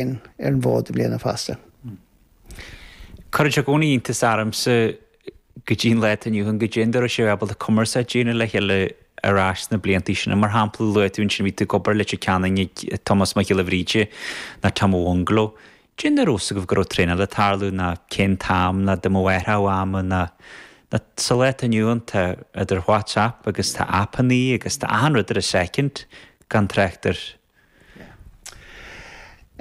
sin ar an bhfód i mbliana fosta. Cuireann sé i gcónaí iontas ormsa go dtí an lá atá inniu ann caidé an dóigh a raibh sibh ábalta cumarsáid a dhéanamh le chéile ar ais sna blianta sin. Mar shampla, luaigh tú ansin bhí tú ag obair i Leitir Ceanainn ag Tomás Mac Giolla Bhríde ná Tom Ó Mhunghaile. Cén dóigh a raibh a fhios agaibh go raibh traenáil ag tarlú ná cén t-am ná dá mbeadh athrú ama ná sa lá atá inniu ann tá idir WhatsApp agus tá aipeanna agus tá achan rud ar an soicind gan trácht ar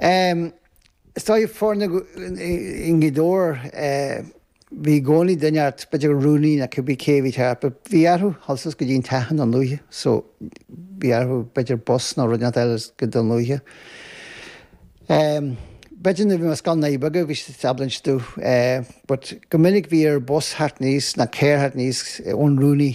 Is dóigh foirne i nGaoth Dobhair, bhí i gcónaí duine inteacht, b'fhéidir an rúnaí nó cibé cé a bhí thart, but bhí orthu dhul suas go dtí an teach don chluiche, so bhí orthu b'fhéidir bus nó rud inteacht eile a eagrú don chluiche. B'fhéidir nuair a bhí mé ar scoil Naí Bheaga bhí siad ábalta insint duit but go minic bhí ar bhus theacht aníos nó carr theacht aníos ón rúnaí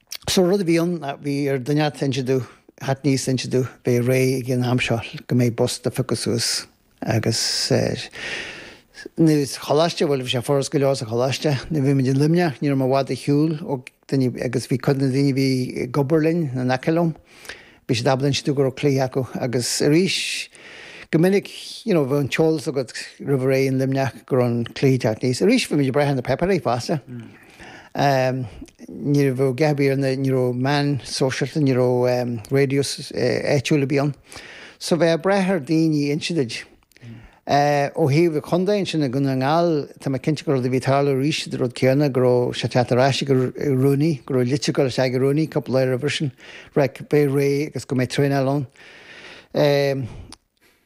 So rud a bhí ann, bhí ar dhuine inteacht inse duit, theacht aníos inse duit, bheith réidh ag an am seo go mbeidh bus do phiocadh suas agus eh, nuair sa choláiste, bhuel bhí sé furast go leor sa choláiste, nuair bhí muid i Luimneach ní raibh muid i bhfad ar shiúl ó dhaoine agus bhí cuid de na daoine bhí ag obair linn na in aice liom, bhí siad ábalta inse duit go raibh cluiche acu agus arís go minic you know, bheadh an t-eolas agat roimh ré in Luimneach go raibh an cluiche ag teacht aníos. Arís bhí muid ag brath ar na páipéirí fosta. Mm. ní raibh a dhath ar bith ann, ní raibh meáin sóisialta, ní raibh raidió áitiúil ar bith ann. So bheith ag brath ar dhaoine inse duit. Ó thaobh an chontae ansin i nDún na nGall, tá mé cinnte gur rud a bhí ag tarlú arís an rud céanna, go raibh sé ag teacht ar ais ag an rúnaí, go raibh litir ag dul isteach ag an rúnaí cúpla lá roimhe sin, ag ráit bheith réidh agus go mbeidh traenáil ann.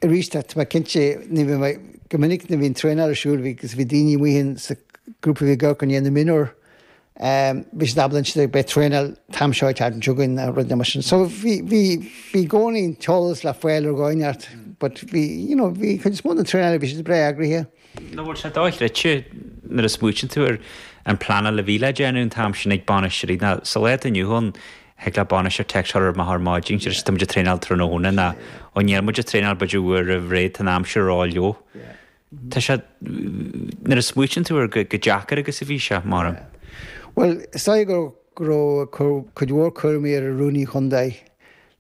Arís, tá mé cinnte, ní bhíonn mé, go minic nuair a bhí an traenáil ar siúl, bhí, bhí daoine amuigh in sa grúpa a bhí ag amharc i ndiaidh na mionúr, bhí siad ábalta insint beidh traenáil t-am seo, t-am seo againn nó rudaí mar sin. So bhí, bhí, bhí i gcónaí an t-eolas le fáil ar dhóigh inteacht but bhí, you know, bhí an chuid is mó den traenáil, bhí siad breá eagraithe. nach bhfuil sé do-chreidte nuair a smaoitíonn tú ar an bpleanáil a bhí le déanamh an t-am sin ag bainisteoirí ná sa lá atá inniu ann, thig le bainisteoir téacs a chur amach ar maidin, sé sin tá muid ag traenáil tráthnóna ná ó níl muid ag traenáil b'fhéidir uair roimh ré, tá an aimsir a rá leo. Tá sé, nuair a smaoitíonn tú air chomh deacair agus a bhí sé, mairim. Bhuel, is dóigh go raibh cuid mhór cúraimí ar an Rúnaí Chontae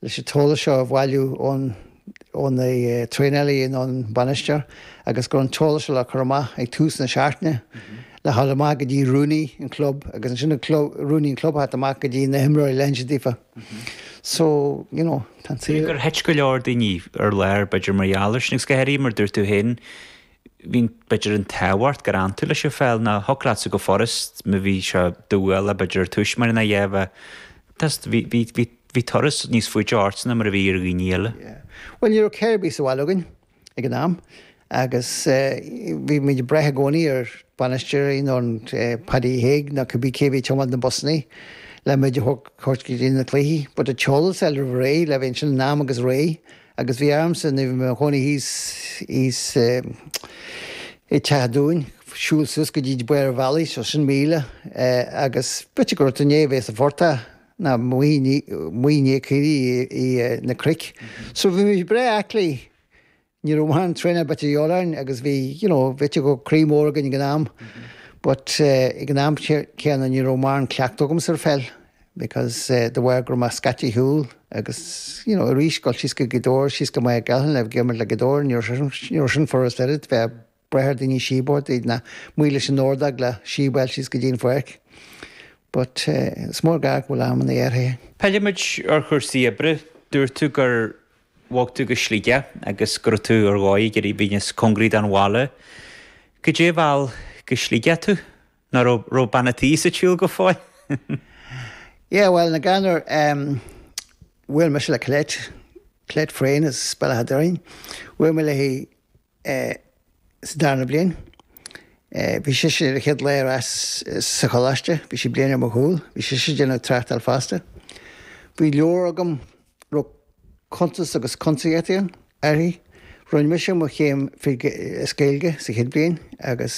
leis an t-eolas seo a bhailiú ó na traenálaithe nó an bainisteoir agus go raibh an t-eolas seo le cur amach ag tús na seachtaine le dhul amach go dtí rúnaí an chlub agus ansin an rúnaí an club theacht amach go dtí na himreoirí le hinse daofa so you know tá seans gur thit go leor daoine ar lár b'fhéidir mar gheall ar sin agus go háirithe mar dúirt tú féin bhíonn, b'fhéidir, an tábhacht gur fhan tú leis an pheil, ná thiocfadh leatsa go furast, má bhí sé do bhualadh, b'fhéidir, ar tús mar ná dhéanfá, tost, bhí, bhí, bhí, bhí turas níos faide ortsa ná mar a bhí ar dhaoine eile. Yeah. Bhuel, ní raibh carr ar bith sa bhaile againn ag an am agus bhí muid ag brath i gcónaí ar bhainisteoirí nó an Paddy Hague ná cibé cé a bhí ag tiomáint na mbusannaí le muid a thabhairt go dtí na cluichí but it showed itself roimh ré, le bheith ansin in am agus réidh Agus bhí ormsa, nuair a bhí mé i mo chónaí thíos i dteach dúinn, siúl suas go dtí barr an bhealaigh, seo sin míle, agus b'fhéidir go raibh tú i ndiaidh a bheith sa phortach, ná amuigh i ndiaidh caoirigh ar na cnoic. So bhí muid breá aclaí, ní raibh mórán traenáil ar bith a dhíobháil orainn agus bhí, you know, b'fhéidir go raibh croí mór againn ag an am but ag an am céanna ní raibh mórán cleachtadh agamsa ar pheil. because de bharr go raibh mé scaite ar shiúl agus you know arís dul síos go Gaoth Dobhair síos go Machaire Gathlán le himirt le Gaoth Dobhair ní raibh ní raibh sin furast ach oiread bheith ag brath ar dhaoine síob a thabhairt duit ná amuigh leis an ordóg le síob a fháil síos go dtí an pháirc but is mór go bhfuil amanna athraithe. Pillfimid ar chúrsaí oibre. Dúirt tú gur bhog tú go Sligeach agus go raibh tú ar dhóigh ag iarraidh bheith níos cóngaraí don bhaile. Goidé a mheall go Sligeach thú? Ná raibh raibh bean a' tí sa tsiúl go fóill? Yeah, well, na Gairneoir, em, bhuail mise le Colette, Colette Frayne as Bealach an Doirín. Bhuail mé léi, eh, sa darna bliain. Eh, bhí sise ar a céad lá ar ais sa choláiste, bhí sí bliain ar mo chúl, bhí sise a' déanamh tráchtáil fosta. Bhí leabhar agam, raibh cuntas agus cuntasaíocht ann, uirthi. Rinne mise mo chéim fé, eh, as Gaeilge sa chéad bhliain agus.